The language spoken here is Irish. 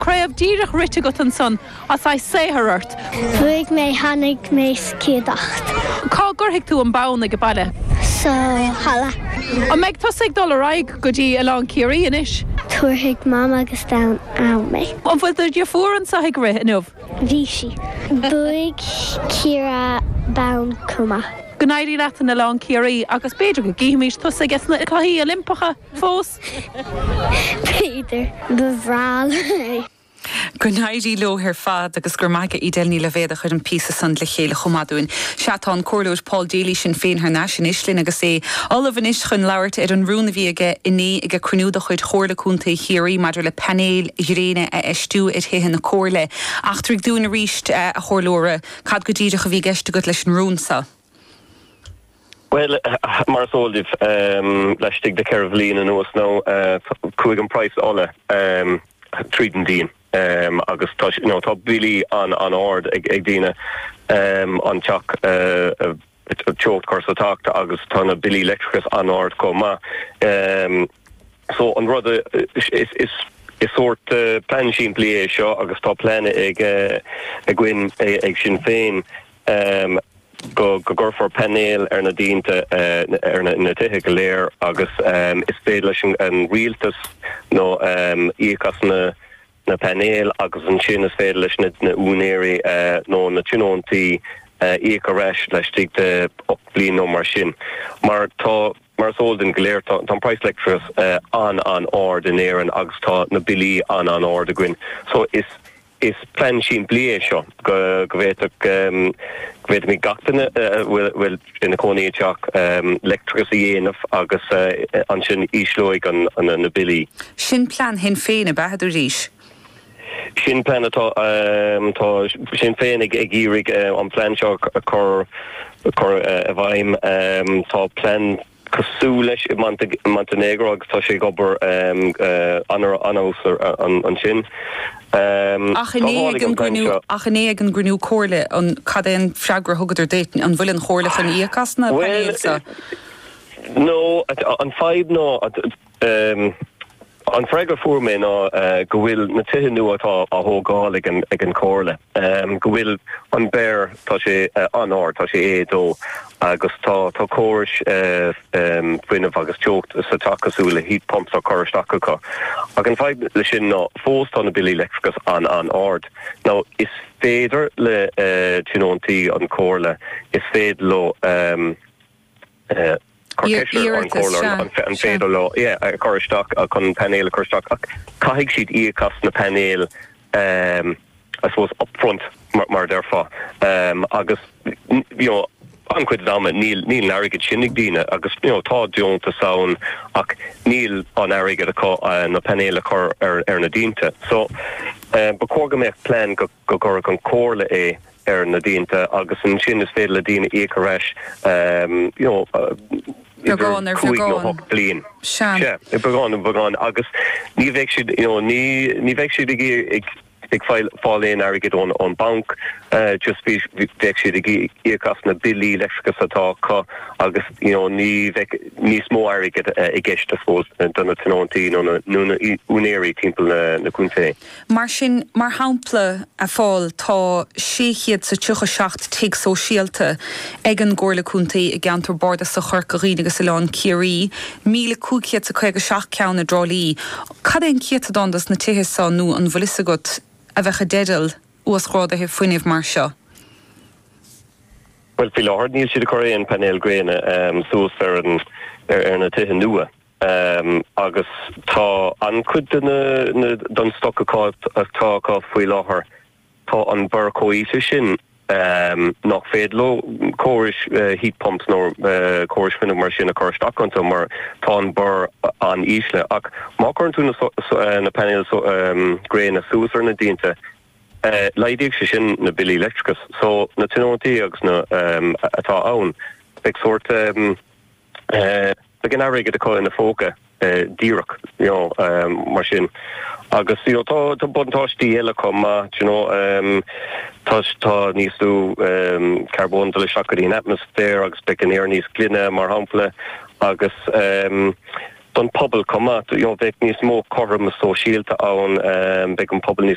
Craobh díreach rite agat ansan, is saothar ort. Bhuaigh mé tháinig mé sa chéad áit. Cá gcuirfidh tú an bonn ag a baile? Sa halla. An mbeidh tusa ag dul ar aghaidh go dtí Oileán Ciarraí anois? Tabharfaidh mam agus daid ann mé. An bhfuil do dhriofúr anseo ag rith inniu? Bhí sí. Bhuaigh sí bonn chomh maith. Go n-éirí leat in Oileán Ciarraí agus b'fhéidir go gcífimís tusa aiges na cluichí Oilimpeacha! fós. B'fhéidir. Ba bhreá liom é. Go n-éirí leo ar fad agus gura maith aige Edel Ní Loibhéad a chuir an píosa san le chéile chomh maith dúinn. Sea, tá an Comhairleoir Paul Daly Sinn Féin thar n-ais anois linn agus é ullamh anois chun labhairt ar an rún a bhí aige inné ag a cruinniú de chuid Chomhairle Contae Chiarraí maidir le painéil ghréine a fheistiú ar thithe na Comhairle. Eachtraigh dúinn arís, a Chomhairleoir, cad go díreach a bhí i gceist agat leis an rún san? Bhuel, mar is eol dom, laistigh de cheithre bhliain anuas nó, chuaigh an praghas ola tríd an díon agus tá sé, nó tá billí an-ard ag daoine, an teach, an teocht a chur sa teach agus tá na billí leictreachais an-ard chomh maith. So, an rud, is sórt plean simplí é seo agus tá plean againn ag Sinn Féin, Amm, go, go gcuirfear painéil ar na díonta, eh, ar na, na tithe go léir agus, amm, is féidir leis an, an rialtas nó, amm, íoc as na, na painéil agus ansin is féidir leis na, na úinéirí, eh, nó na tionóntaí, eh, íoc ar ais laistigh de ocht bliain nó mar sin. Mar tá, mar is eol dúinn go léir tá, tá an praghas leictreachais, eh, an-an-ard in Éirinn agus tá na billí an-an-ard againn. So is. Is plean simplí é seo go bhféadfadh gach duine a bhfuil ina cónaí i dteach leictreachas a dhéanamh agus ansin ísleoidh na billí. Sin plean Shinn Féin, ab ea? a dúraís. Sin plean atá. Tá Sinn Féin ag iarraidh an plean seo a chur i bhfeidhm. Tá plean cosúil leis i Montainéagró agus tá sé ag obair ar fheabhas ansin. Ach inné ag an gcruinniú, ach inné ag an gcruinniú comhairle, cad é an freagra a thugadar duit? An bhfuil an chomhairle chun íoc as na painéil seo? Bhuel, no, an fadhb ná. Bhuel, an freagra a fuair mé ná go bhfuil na tithe nua atá á thógáil ag an chomhairle, go bhfuil an BER, tá sé an-ard, tá sé A2 agus tá córais fuinnimh agus teocht sa teach cosúil le heat pumps á cur isteach acu. Ach an fadhb le sin ná fós tá na billí leictreachais an-an-ard. Now is féidir le tionóntaí an chomhairle, is féidir leo, Iarratas, sea. Cuir ceist ar an gComhairle an féidir leo é a chur isteach, chun an painéal a chur isteach, ach caithfidh siad íoc as na painéil I suppose up front mar a déarfá agus you know an-chuid den ama níl an airgead sin ag daoine agus you know tá deontas ann ach níl an airgead acu na painéil a chur ar na díonta so ba chóir go mbeadh plean go go gcuirfeadh an Chomhairle é ar na díonta agus ansin is féidir le daoine íoc ar ais you know idir cúig nó hocht mbliana. Sea. Sea. Beagán ar bheagán agus ní bheidh siad you know ní ní bheidh siad ag ag ag fáil aon airgid ón ón banc eh just bhí bheadh siad ag íoc as na billí leictreachais atá acu agus you know ní bheidh níos mó airgid i gceist I suppose do na tionóntaí nó na nó na úinéirí timpeall na na contae. Mar sin, mar shampla, a Phóil, tá sé chéad is a tríocha seacht tigh sóisialta ag an gComhairle Contae i gceantar bardasach Chorca Dhuibhne agus Oileán Ciarraí, míle cúig chéad is a caoga seacht ceann i dTrá Lí. Cad é an céatadán dos na tithe seo, nó an bhfuil fhios agat, a bheadh i dteideal uasghráduithe fuinnimh mar seo? Bhuel, faoi láthair níl siad ag cur aon phainéil gréine suas ar na tithe nua. Ehm, agus tá an-chuid de na, na, den stoc acá, atá acá faoi láthair, tá an BER chomh híseal sin, ehm, nach féidir leo córais, eh, heat pumps nó, eh, córais fuinnimh mar sin a chur isteach iontu mar tá an BER an-íseal. Ach má chuireann tú na so, so, eh, na painéil so, ehm, gréine suas ar na díonta, eh, laghdóidh sé sin na billí leictreachais. So, na tionóntaí agus na, ehm, atá ann, beidh sórt, ehm, Beidh an airgead acu ina bpóca díreach mar sin agus tá buntáistí eile chomh maith. Tá níos lú carbóin ag dul isteach go dtí an atmaisféar agus beidh an aer níos glaine, mar shampla, agus don phobal chomh maith. Beidh níos mó cothroime sóisialta ann. Beidh an pobal níos.